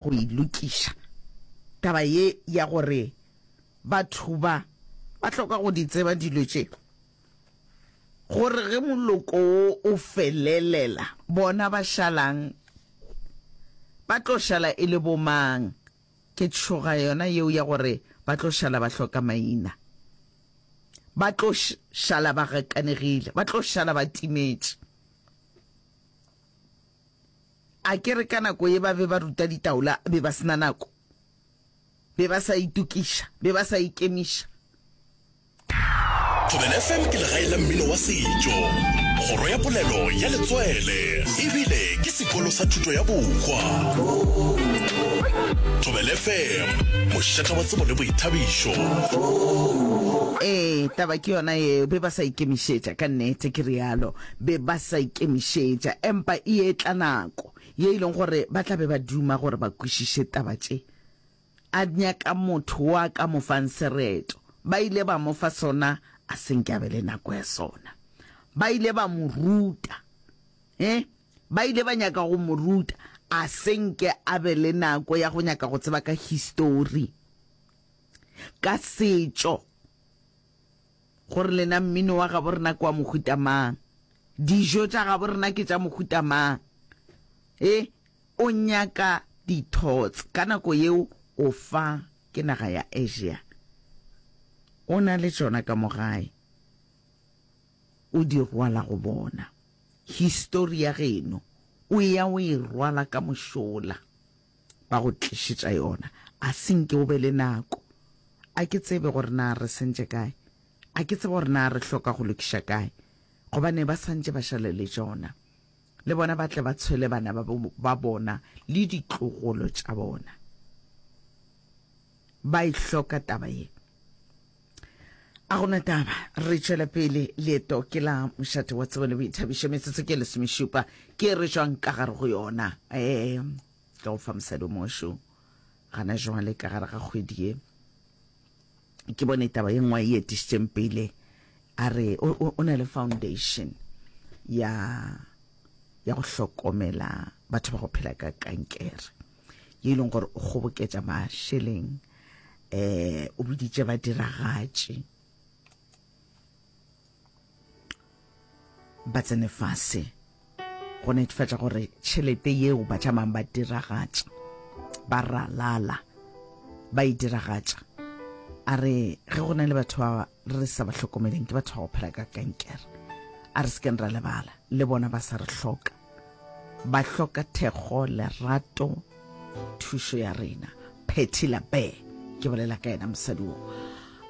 go e lokiša. Taba ye ya gore batho ba ba hloka go di tseba dilo tše, gore ge moloko wo o felelela bona ba šalang ba tlo šala e le bomang, ke tšhoga yona yeo ya gore ba tlo šala ba hloka maina, ba tlo šala ba gakanegile, ba tlo šala ba timetše. A ke re ka nako ye ba be ba ruta ditaola be ba sena nako? Be ba sa itokiša? Be ba sa ikemiša? Thobela FM ke legae la mmino wa setšo, kgoro ya polelo ya letswele e bile ke sekolo sa thuto ya bohwa. Thobela FM, mošata wa tsebo le boithabišo. Ee, taba ke yona yeo, be ba sa ikemišetša, ka nnete ke realo. be ba sa ikemišetša, empa e etla nako ye e leng gore ba tla be ba duma gore ba kwešiše taba tše. A nyaka motho wo a ka mo fang sereto. Ba ile ba mo fa sona, a se nke a be le nako ya sona. Ba ile ba mo ruta. E, ba ile ba nyaka go mo ruta, a se nke a be le nako ya go nyaka go tseba ka histori, ka setšo. Gore lena mmino wa gabo rena ke wa mohuta mang? Dijo tša gabo rena ke tša mohuta mang? E, o nyaka dithots. Ka nako yeo o fa ke naga ya Asia. O na le tšona ka mo gae. O di rwala go bona. Histori ya geno o eya o e rwala ka mošola. ba go tlišetša yona. A se nke o be le nako. A ke tsebe gore na re sentše kae. A ke tsebe gore na re hloka go lokiša kae. Gobane ba santše ba šale le tšona. Le bona ba tle ba tshwele bana ba bona le ditlogolo tša bona. ba e hloka taba ye. A gona taba, re tšwela pele leeto ke la mošate wa tsebo le boithabišo, metsotso ke lesomešupa, ke re jwang ka gare go yona? Ee, ka go fa mosadi o mongwe šo gana jwale ka gare ga kgwedi ye. Ke bone taba ye nngwe e etišitšeng pele a re o na le foundation ya ya go hlokomela batho ba go phela ka kankere ye e leng gore o kgoboketša mašeleng um o biditše badiragatši ba tsene fase go netefatša gore tšhelete yeo ba tšamang ba diragatša ba ralala ba e diragatša a re ge go na le batho ba re sa ba hlokomeleng ke batho ba go phela ka kankere a re sekeng ra lebala le bona ba sa re hloka Ba hloka thekgo, lerato, thušo ya rena. Phetty Labe, ke bolela ka yena mosadi wo.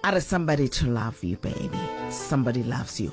A re somebody to love you baby, somebody loves you.